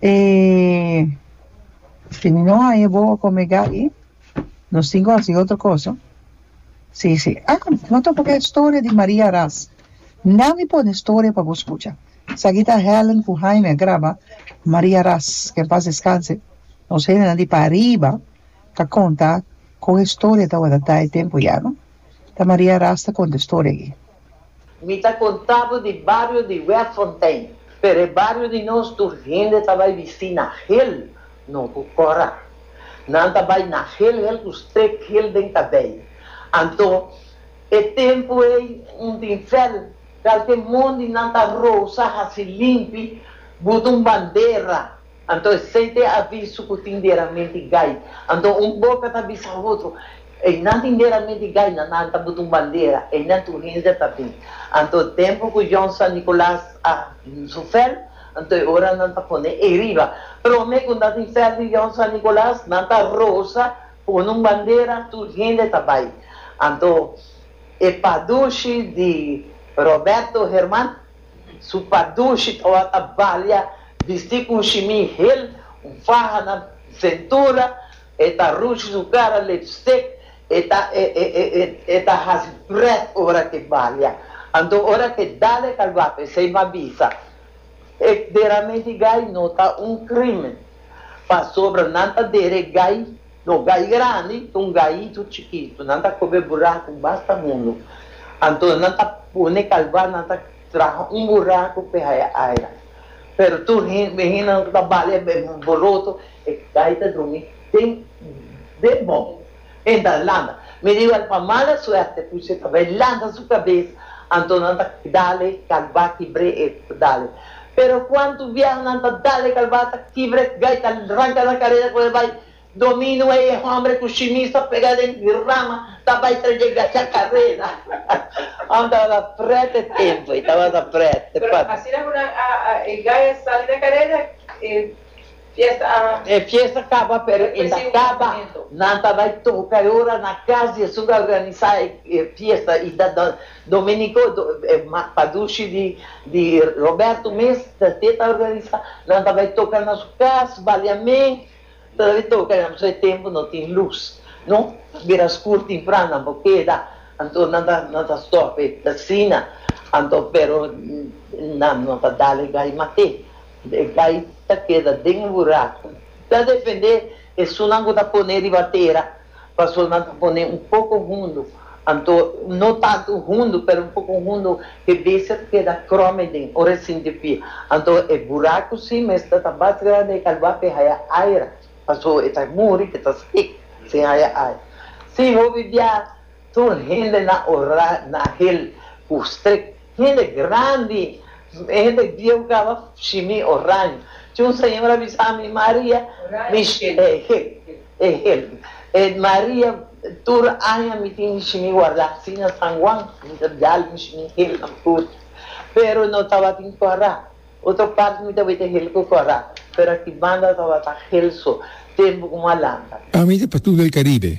E si no hay e bobo con mega ahi nos tin cu haci otro cosa si si ah no ta pone historia di Maria Ras na mi pone historia pa bo scucha esaki ta Helen cu Heine a graba Maria Ras que en paz descanse nos hende di pa ariba ta conta con historia ta wordad ta e tempo ya no ta Maria Ras ta conta historia aki. Mi ta contá bo di bario di Werffontein, pero e bario di nos tur hende ta bai bistí na geel, no cu cora. Nan ta bai na geel geel cu streek geel den cabei. Anto, e tempo ei un tin fel, calke mondi nan ta rosa haci limpi, buta un bandera Anto esei ta e aviso ku tin deramenti gai. Anto un boka ta bisa otro, Einan tin deramenti gai, na nan ta buta un bandera, einan tur hende ta bin. Anto tempu ku Jon San Nikolas a su fèl, anto e ora nan ta pone ei riba. Promé ku nan tin fèl di Jon San Nikolas, nan ta rosa, pone un bandera, tur hende ta bai. Anto e padushi di Roberto Herman. Su pa dushi tabata balia, bisti ku un shimí hel, un faha na sentura, e ta rushi su kara, lipstick, e ta e e e e e ta hasi prèt ora ke balia. Anto ora ke dale ta guapo esei ba bisa e dera menti gai no ta un krimen, pasobra nan ta dere gai. No gai grandi ta un gaitu chikitu. Nan ta kobe buraku basta hundu. Anto nan ta pone kalba, nan ta traha un buraku pe haya aera. Pero tur hende ku ta bali e boroto, e gai ta drumi den den bon. E ta lanta. Mi riba el pa mala suerte puchi e ta bay lanta su kabes, anto nan ta dale kalba kibre e ta dale. Pero cuantu vieho nan ta dale calbasa kibret gai ta ranca nan carera cu e bai domino ey e hombre cu shimisa pega den rama ta bai tra dje gacha carera Ham tabata pret e tempo ey tabata pret e Pero asina cu nan a e gai a sali na carera e. Fiesta a. E fiesta kaba pero inda kaba nan ta bai toka e ora na kas di esun ta organisa e fiesta i ta ta Domenico padushi di di Roberto mes ta te ta organisa nan ta bai toka na su kas baliamen ta bai toka ya so e tempo no tin luz no ta bira skur timpran nan por keda anto nan ta nan ta stop e asina anto pero nan no ta dale gai mate E bai ta keda den e buraku. Ta defendé esunnan ku ta poné riba tera, pasobra nan ta poné un poko hundu, anto no tantu hundu pero un poko hundu, e bestia ta keda krome den ora e sinti pia. Anto e buraku si mes ta ta bas grandi, e ka lua pa e haya aer, pasobra e ta muri, e ta sik sin haya aer. Si hopi bia tur hendenan orá na hel ku strik. Hende grandi, e hende bieu caba shimi oraño. Tin un señor a bisa ami, Maria, mi Maria, tur aña mi tin mi shimi guarda asina San Juan mi ta dal mi shimi hel nan tur, pero no tabatin cora. Otro part mi tabata hel cu cora, pero aki banda tabata hel so, tempo cu malanta. Ami ta pa tur el Caribe.